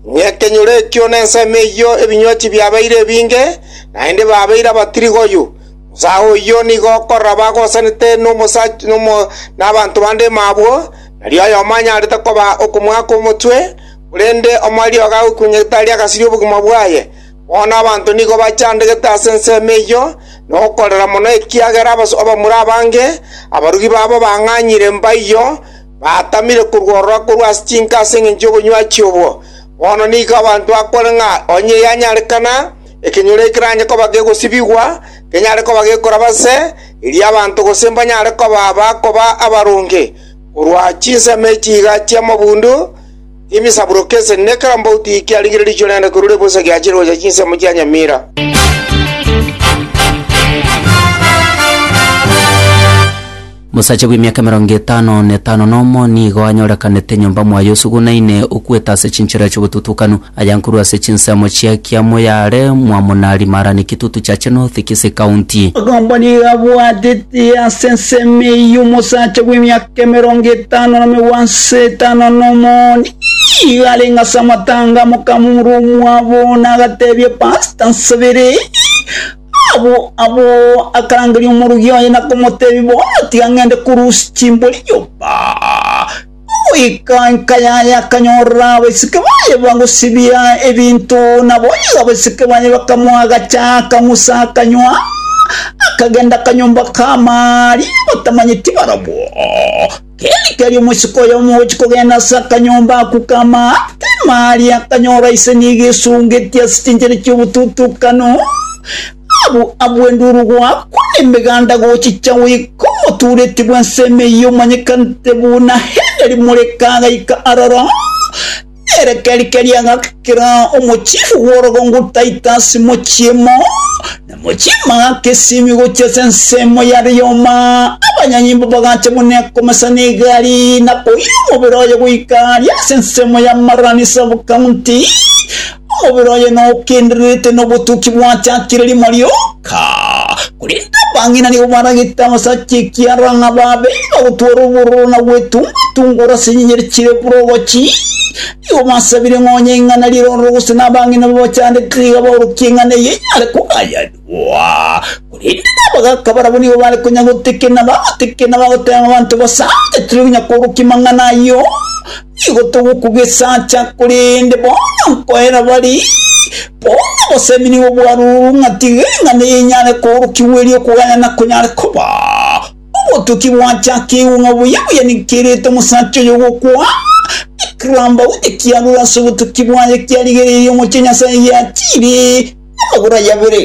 Ng'ekenyoro ekio nensemo eyio ebinyochi biabeire ebinge, naende babeire abatirigoyu. Omosae oyio nigo okorora bagosanete nabanto bande mabwo, nario oyomo anyarete koba okomoaka omotwe, korende omoeriogo agokunyegete aria agasirie obogima bwaye. Bono abanto nigo bachandegete ase ensemo eyio, na okorera mono ekiagera abamura abange, abarugi babo bang'anyire mbaiyo, Batamire korwa ororo akorwa ase chinka ase engencho y'obonywaki chi'obwo. Bono nigo abanto bakore ng'a onye yanyarekana, ekenyoro eke keranye koba gegosibigwa, kenyare koba gekoraba se, erio abanto gose mbanyare koba bakoba abaronge, korwa chinsemo echi iga chi'amabundu, emisaburoke ase ne kera mbauti eke arigire riicho rende korwa ribosa giachire gocha chinsemo chia nyamira. Mosacha bw'emiaka emerongo etano na etano nomo nigo anyorekanete nyomba mwaye osugunaine, okwete ase chinchera chi'obotutukanu, aya nkorwa ase chinsemo chia kiamo yare Mwamonari Marani Kitutu Chache North Kisii County. Agomba nigo abwatete ase ensemo eyio omosacha bw'emiaka emerongo etano na megwanso etano nomo nigo arenge ase amatanga amokamura omwabo na agateebia Pastor nsabere Agwo agwo akarangeria omorogi oye na komotebia, Bono tiga ngende korusia chimbori nyomba. Goika enka yaye akanyorora abaiseke baye bagosibia ebinto, nabo onye abaiseke baye bakamoa agacha, akang'usa, akanywa, akagenda akanyomba k'amaari batamanyeti barabwo. Keri keri omosiko oyomo ogochia kogenda ase akanyomba ako k'amaatema aria, akanyora ise nigo esungetie ase chinchera chi'obotutukano, abu abu enduru goakwa na emeganda gochicha goika omotuureti bw'ensemo eyio omanyekanete buna Henry Moreka agaika aroro. Ere keri-keri agakera omochie bw'orogongo Titus mochiemo, na mochie magaka esimi gochia ase ensemo ya Rioma. Abanyanyimbo bagacha buna ekomesa na egari, na koira omobere oye goika aria ase ensemo ya Marani sub-county. Omobere oye nokendererete nobotuki bwachakire rimo ri'okobua. Ka, korende abang'ina nigo baragete abasacha ekiagera ng'a babe bagotwara obororo na gwetunga-tunga ore ase enyenyere chire buna obochi. Nigo basabire ng'a onye ing'ana rirorwe gose nabang'ina babachandete tiga baorokie ing'ana eye enyare kogayanigwa. Korende nabagaaka barabwo nigo bare konya gotekerera na bagatekerera na bagoteba ng'a abanto basaanchete tiri konya koorokia mang'ana ayio. Nigo togokogesacha, korende bono nkoera bare, bono obosemi nigo bwarurwe ng'a tiga eng'ana eye enyare koorokigwa erio okogayana konyare koba. Obotuki bwachakigwe ng'a buya buya nikiairete omosacha oyo ogokwa, ekirambauti kiarure ase obotuki bwaye kiarigereirie omochie Nyasaye giatiire. Amagoro aye abere.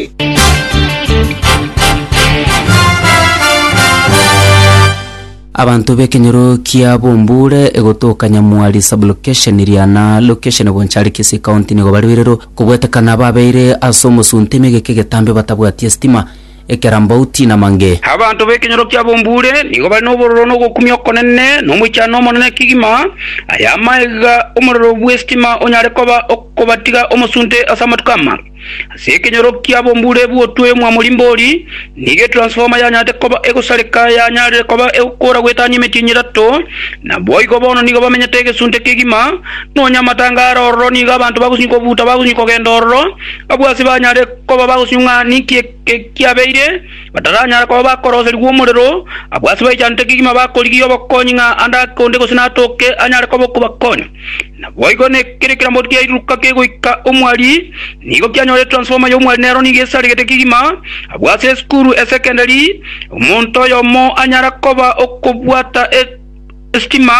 Abanto b'ekenyoro kia Bombure egotoka Nyamwari Sub-location Riana Location Bonchari Kisii County nigo bari birero kobwetekana babeire ase omosunte emegeka egetambe batabwati estima ekerambauti na mange. Abanto b'ekenyoro kia bombure nigo bare nobororo na ogokumia okonene, na omoichano omonene kegima. Aya amaiga omorero bw'esitima onyare koba okobatiga omosunte ase amatuko ama. Ase ekenyoro kia bombure bw'otwe omwamori mbori, nigo etransfoma yanyarete koba egosareka yanyarire koba egokora gwetania emetienyi etato. Naboigo bono nigo bamenyete egesunte kegima, nonya amatangare ororo nigo abanto bagosinywa kobuta bagosinywa kogenda ororo, abwo ase banyare Koba bagosio ng'a ninki ekiabeire, bataranyara koba bakoroserigwa omorero, abwo ase baichanete kegima bakorigia obokonyi ng'a ande ake onde gose natooke anyare koba okobakonya. Naboigo nekere kiramori kiairuruka kegoika omwari, nigo kianyore transformer y'omwari nero nigo esaregete kegima, abwo ase esukuru esekendari omonto oyomo anyara koba okobwata e Esitima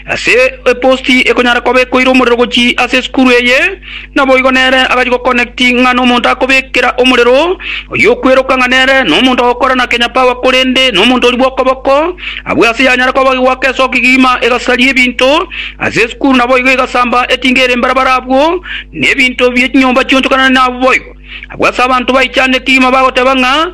ase eposti ekonyara koba ekoire omorero gochia ase esukuru eye, naboigo nere agachia goconnecti ng'a nomonto akobekera omorero, oyio okweroka ng'a nere nomonto ogokora na Kenya Power korende nomonto oria bw'okoboko. Abwo ase yanyara koba egoaka ase okegima egasaria ebinto ase esukuru naboigo egasamba etinga ere mbarabara abwo nebinto bie chinyomba chionchokanane nabwo boigo. Abwo ase abanto baichana ekegima bagoteba ng'a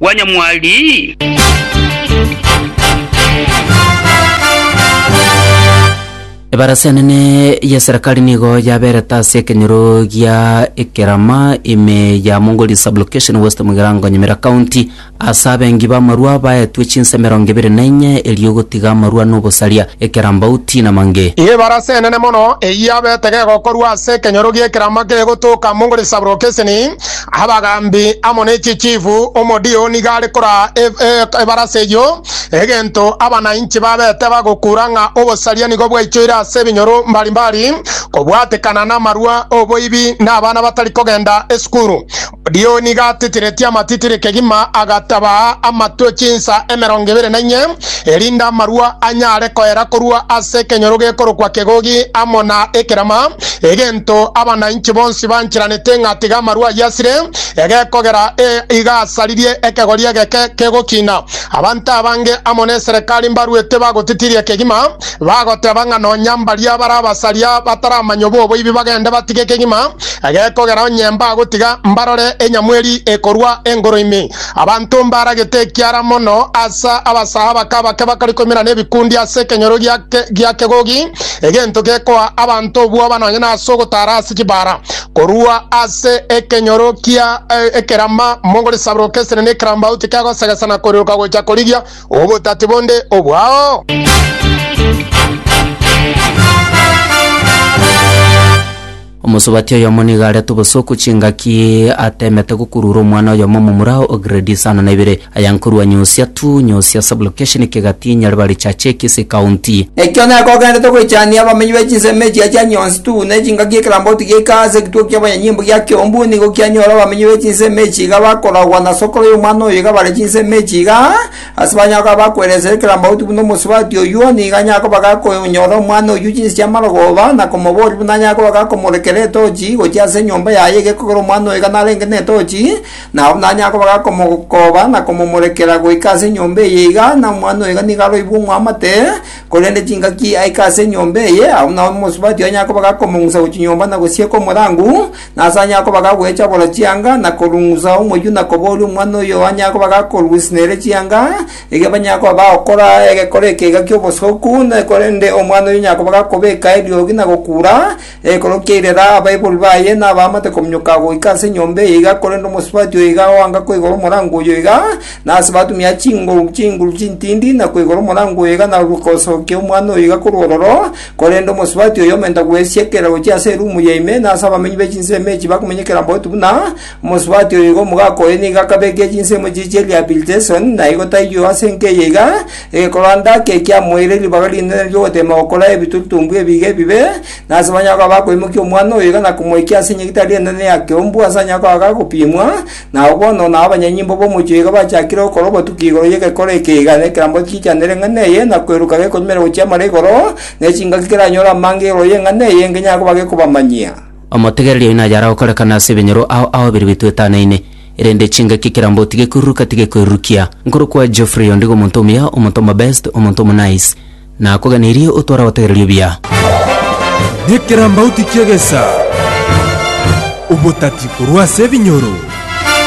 bwa nyamwari. Ebarasi enene y'eserekari nigo yaberete ase ekenyoro gia Ekerama ime ya Mongoli Sub-location West Mugirango Nyamira County ase abengi b'amarwa baetwe chinsa emerongo ebere na inye erio gotiga amarwa na obosaria, ekerambauti na mange. Ebarasi enene mono eyio yabete gegokorwa ase ekenyoro gi'Ekerama kegotoka Mongoli Sub-location. Abagaambi amo ne chichifu, omodio nigo are koraa ebarasa eyio, egento abanainchi babete bagokuura ng'a obosaria nigo bwaichoire ase ebinyoro mbari mbari, kobwatekana namarua, oboibi, na abana batari kogenda esukuru. Omodio nigo atitiretie amatitire kegima, agatabaa amatwe chinsa emerongo ebere na inye, erinde amarua anyare koera korwa ase ekenyoro gekorokwa Kegogi amo na Ekerama, Egento abanainche bonsi bancheranete ng'a tiga amarwa ayio asire, egekogera ee iga asaririe ekegori egeke kegokina. Abanto abange amo n'eserekari mbaruete bagotitiria kegima, bagoteba ng'a nonya mbaria bare abasaria bataramanya oboboibi bagende batige kegima, egekogera onye mbagotiga mbarore enyamweri ekorwa engoro ime. Abanto mbaragete ekiara mono ase abasahaba kabake bakare ikomi na nebikundi ase ekenyoro gi'akegogi, egento gekoa abanto obwoba nonye nase ogotara ase chibara. Korua ase ekenyoro kia ekerama mogore saburoka esene na ekerambauti kegosegesa na koreroka gocha korigia obotati bonde obwao. Omosubati oyomo nigo arete obosoku chingaki atemete gokurura omwana oyomo omomura o grade isano na ibere aya nkorua Nyosia to Nyosia Sublocation Kegati Nyaribari Chachekis Ekaunti. Ekio nere kogenderete goichania abamenyi be chinsemo echia chia Nyonsi to ne chingaki ekeramboti geika ase egituko kia abanyanyimbo gia Kiombu nigo kianyora abamenyi be chinsemo echi iga bakoragwa na sokoro y'omwana oyo iga bare chinsemo echi iga Ase banyakoba bakweresera ekerambaoti buna omosubati oyio, nigo nyakoba gakonyora omwana oyio chinse chi'amarogooba, na komoboria buna nyakoba gakomorekera etochi gochia ase enyomba yaye egekogera omwana oyo iga narenge netochi, na abwo buna nyakoba gakomokooba na komomorekera goika ase enyomba eye iga, na omwana oyo iga nigo aroibwe ng'wamate, korende chingaki aike ase enyomba eye, abwo buna omosubati oye nyakoba gakomong'usa gochia nyomba na gosieka omorangu, Nasani akoba gagwechabora chianga na korung'usa omoyio na kobooria omwana oyo anyare koba gakorwisina ere chianga, erio banyare koba bagokora egekore ekeiga ki'obosoku, na korende omwana oyo onyare koba gakobeka eriogi na gokuura ekero kiairera abaiborwi baye nabaamate kominyoka goika ase enyomba eye iga, korende omosubati oyo iga oanga koigora omorango oyo iga, na ase batumia chinguru chinguru chintindi na koigora omorango oyo iga na gosokia omwana oyo iga korwa ororo, Korende omosubati oyo omenta gwesia ekerero gochia ase erumu ya ime, na ase abamenyi be chinsemo echi bakomenyekera bobe buna omosubati oyo iga omogaka oye nigo akabeekia chinsemo echi chia rehabilitation, na igo taiyo ase enka eye iga, egekoranda ake kiamoeire ribaga rinene ri'ogotema gokora ebitutumbwe ebi iga ebibe, na ase banyare koba bakoimokia omwana oyo iga na komoikia ase enyegitari enene ya keumbu ase anyare koba agagopimwa, Nao bono na abanyanyimbo b'omochie iga bachakire gokora obotuki igoro y'egekoro eke, iga nekerambe gichanere eng'ana eye, na kweruka gekonywera gochia amara igoro, ne chingaki keranyore amange igoro y'eng'ana eye, engenye akoba gekobamanyia. Omotegereria oino ayare gokorekana ase ebinyoro ao aoberirwe etwetanaine, erende chingaki ekerambe otige koiruruka tige koirurukia. Nkorokwa Geoffrey ondigo omonto omuya, omonto omobest, omonto omonice. Nakogeneirie otware obotegereria obuya. Nekirambauti ki'egesaa, obotati korwa ase ebinyoro.